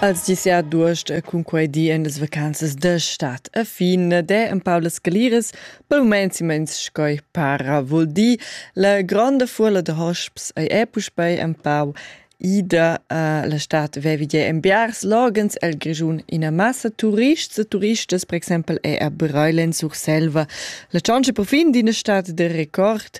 Als dis ja duost cun quei di en las vacanzas da stat a fin de en Paulas Galiras per moments immens scoi para vol di la gronda fuola de hosps ei è puspei en pau ida uh, la stat vevi de enviars logens el Grischun ina massa turists e turistas per exempel è a Breilen sur Selva la chance per fin d'ina stat de record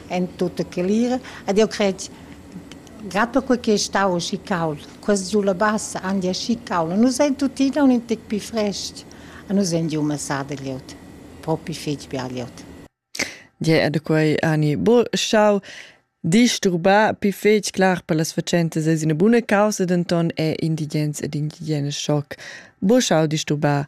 en tutta clira ed jeu cret grad per quei che ei stau aschi cauld, quest giu la bassa han di aschi cauld, nus ein tuttina un tec pli frest, a nus ein giu masada glieud, propi fetg bia glieud. Gie, e da quei ani bo schau disturbar pi fetg clar per las facentas es üna buna causa, denton è indigens ed indigenas schoc. Bo schau disturbar